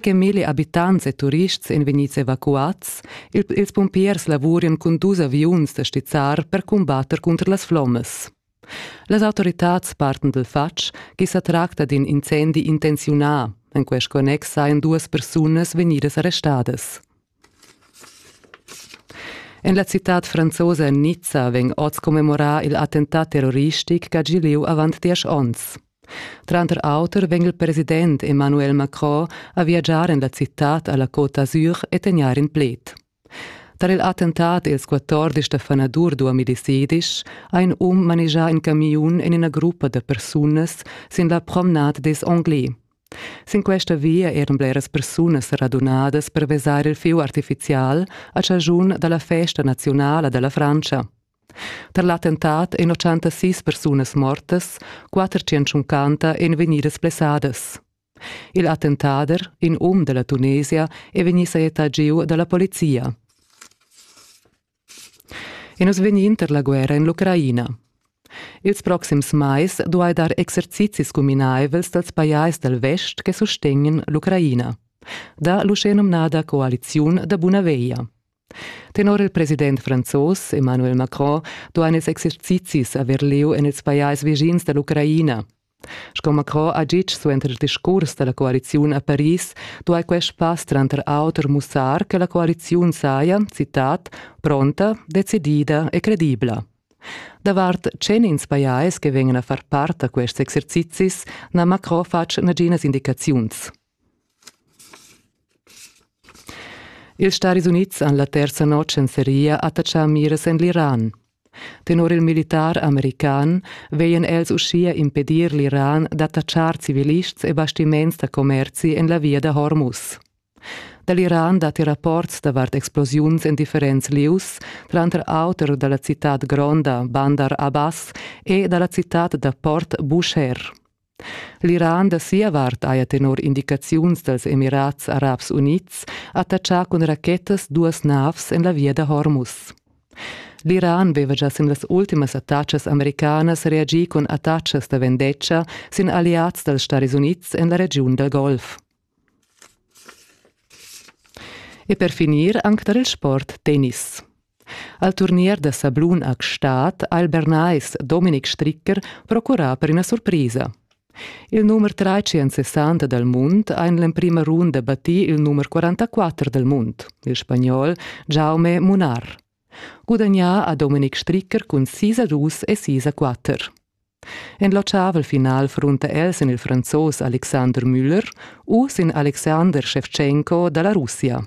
che milli abitants e turists ein vegnids evacuads, ils pumpiers lavurian cun dus aviuns da stizzar per cumbatter cunter las flommas. Las autoritads parten dal fatg che sa tracta d'in incendi intenziunà. En quest connex sajan duas persunas vegnidas arrestadas. En la citad franzosa Nizza vegn oz commemorà il attentat terroristic ch'ha gì lieu avant diesch onns. Tranter auter vegn il president Emmanuel Macron a viagiar en la citad a la Côte d'Azur e tegnair in pled. Tar il attentat ils 14 da fanadur 2010 ha in um manegià in camiun en ina gruppa da persunas sin la promenade des Anglais. Sin questa via eran bleras persunas radunadas per vesar il fieu artifizial a chaschun da la festa naziunala da la Frantscha. Tar l'attentat èn 86 persunas mortas, 450 èn vegnidas blessadas. Il attentader, in um da la Tunesia, è vegnì sajettà giu da la polizia. E nus vegnin inter la guerra en l'Ucraina. Ils proxims mais duai dar exercizis cuminaivels dals pajais dal vest che sustegnan l'Ucraina, da l'uschenumnada coaliziun da buna veglia. Tenor il president franzos Emmanuel Macron duain ils exercizis aver lieu en ils pajais vischins da l'Ucraina, Sco Macron ha ditg suenter il discurs da la coaliziun a Paris, duai quest pass tranter auter mussar che la coaliziun saja, citat, pronta, decidida e credibla. Davart tschenins pajais che vegnan a far part da quests exercizis n'ha Macron fatg naginas indicaziuns. Ils Staris Unids han la terza notg en seria attatschà miras en l'Iran. Tenor il militar american veien els uschia impedir l'Iran d'attatschar civilists e bastiments da commerzi en la via da Hormuz. Da l'Iran datti rapports davart explosiuns en differents lieus, tranter auter da la citad gronda Bandar Abbas e da la citad da port Bushehr. L'Iran da sia vart haja tenor indicaziuns dals Emirats Arabs Unids attachà cun rachetas duas navs en la via da Hormuz. L'Iran veva già sin las ultimas attacas americanas reagì cun attachas da vendetta sin alliads dals Stads Unids en la regiun dal Golf. E per finir anc tar il sport tennis. Al turnier da sablun a Gstaad ha il Bernais Dominik Stricker procurà per ina surprisa. Il numer 360 dal mund ha en l'emprima runda battì il numer 44 dal mund, il spagnol Jaume Munar. Gudagnà ha Dominik Stricker cun sis a dus e sis a quatter. En l'otschavel final frunta el sin il Franzos Alexander Müller u sin Alexander Shevchenko da la Russia.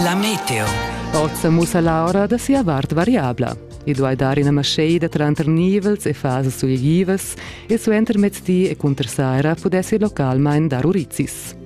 La meteo. Oz sa mussa l'aura da sia vart variabla. I duai dar ina maschaida tranter nivels e fasas sulgivas e suentermezdi e cunter saira pudessi localmain dar urizis.